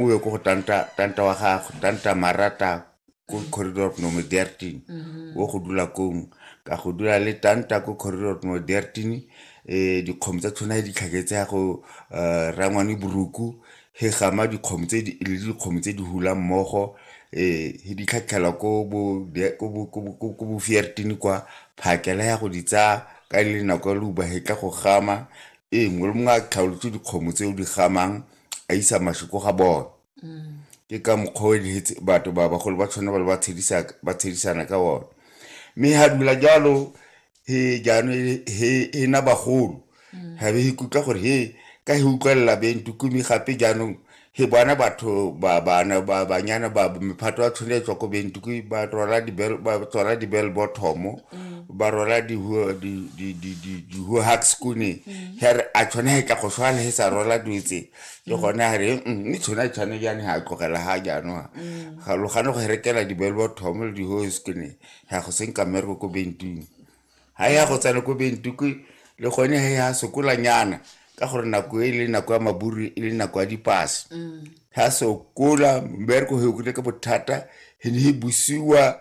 o ye ko go tanta tanta wa gagwe tanta marata ko corridor of nome dertin mm-hmm. o go dula kong ka go dula le tanta ko corridor of nome dertin um eh, dikgomo tsa tshwana di tlhaketse ya go eh, rangwane boruku he gama dikgomo tse di le dikgomo tse di hula mmogo eh he di tlhatlhela ko bo ko bo ko bo ko bo fiertini kwa phakela ya go di tsa ka le nako lu ba hetla go gama eh mongwe le mongwe a tlhaolotse dikgomo tse o di gamang a isa maswi ko ga bone mm. ke ka mokgwa o eletse batho ba bagolo ba tshwane ba le ba tshedisana ka one mme ga dumela jalo he jaanong he na bagolo mm. ga be he kutlwa gore he ka he utlwelela bentukumi gape jaanong he bona batho banyana ba mephato ya tshwanetswa ko bentukumi ba tswala di-bell bottomo mm. ba rola di-hohax kune mm. ga re a tshwana ga tla go swala ge sa rola dutse ke mm. gone a re mme tshwana tshwane jane ga a tlogela ga jaanong ga logane go rekela di-belbo thomo le di-hohax kune ga go senka mmereko ko bentuku ga ya go tsena ko bentuku le gone ge ya sokolanyana ka gore nako e le nako ya maburu e le nako ya dipase ga sokola mmereko ge o kile ka bothata e ne e busiwa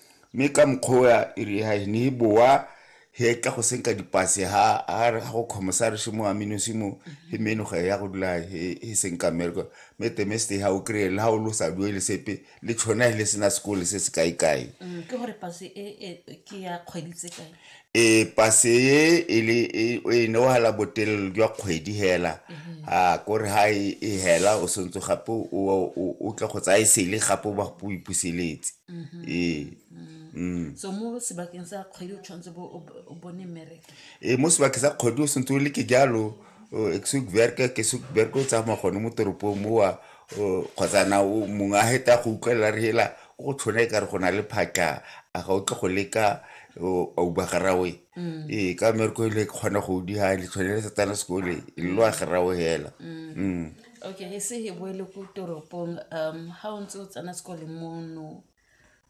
Mme ka mokgwa o e re ha e ne e boa he tla go senka dipase ha a ga go kgomosa re shimo aminosi mo he meno ga ya go dula he senka mmereko mme temeste ha o kry-e le ha o lo sa duele sepe le tshone le sena sekole se se kae kae mm, ke gore pase e, e ke ya kgwedi tse kae e pase e e le e o e neohala botelelo jwa kgwedi hela a kore ha e e hela o sentse gape o- o o- o tle go tsaya e sele gape o ba go o ipuseletse ee mm. so mo sebakeng sa kgwedi o tshwanetse bo o bo- o bone mmereko e mo sebakeng sa kgwedi o sentse o le ke jalo o- ke se bereke ke se bereke o tsamaya gone mo toropong mowa kgotsa na mongwe a heta go utlwelela re hela ko go tshwana e kare go na le phatla a ga o tle go leka a uba garawe mm. ee ka mereko ele kgona go udi ga le tshwane le satana sekole e lo a garawe hela mm. Mm. okay re se he boele ko toropong um ha o ntse o tsena sekole mono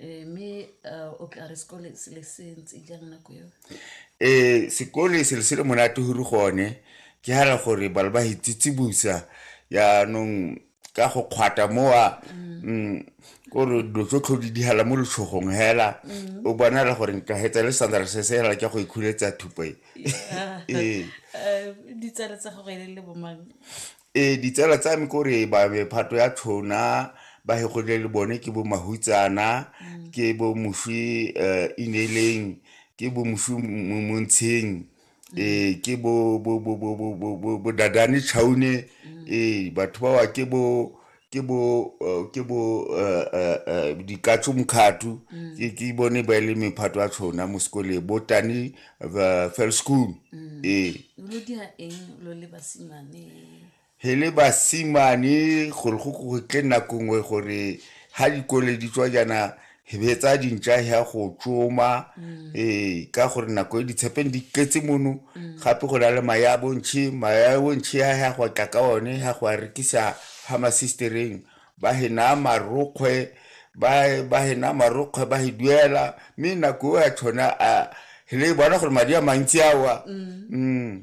Ee, mme uh, o tla re sekole se le se ntse jang nako eo um sekole selo se le monate gore gone ke hara gore bana ba hitsitsibusa yaanong ka go kgwata mowa mm, kore dilo tso tlho di dihala mo letshogong hela o bonala gore nka hetsa le sandra se se hela ke go ikhuletsa thupo e Yeah. Ee. Eh, ditsala tsa gago e le le bomang Ee, ditsala tsa me kore ba mephato ya tshona ba hegodile le bone ke bo mahutsana mm. ke bo moswi um eh, ineleng ke bo moswi montsheng mm. ee eh, ke bo dadane chaune mm. ee eh, batho bawa ke bo ke bo uh, ke bo uh, uh, uh, dikatso mkhathu mm. ke ke bone ba le mephato a tshona mo sekole bo tani uh, fell school mm. e lo dia eng lo le basimane he le basimane gore go go tle nako nngwe gore ha dikole di tswa jana be tsa dintša ya go tsoma mm. ee ka gore nako e ditshepeng di tletse mono mm. gape go na le maya a bontšhe maya a bontšhe ya ya go tla ka one ya go a rekisa ga masistereng ba hena marokgwe ba hena marokgwe ba e duela mme nako e ya tshona a le bona gore madi a mantsi awa mm.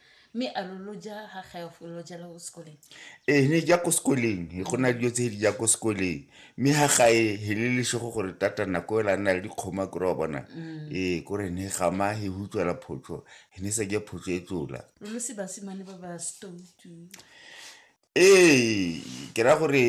mme a lo lo ja ga gaefo lo jala ko sekoleng ee ne ja ko sekoleng e go na dilo tse di ja ko sekoleng mme ga gae he le lesego gore tata nako ela nna le dikgoma kore wa bona mm. ee kore ne gama he hutswela photsho he ne sa ja photsho e tsola lo lo se basimane ba ba stoutu ee ke ra gore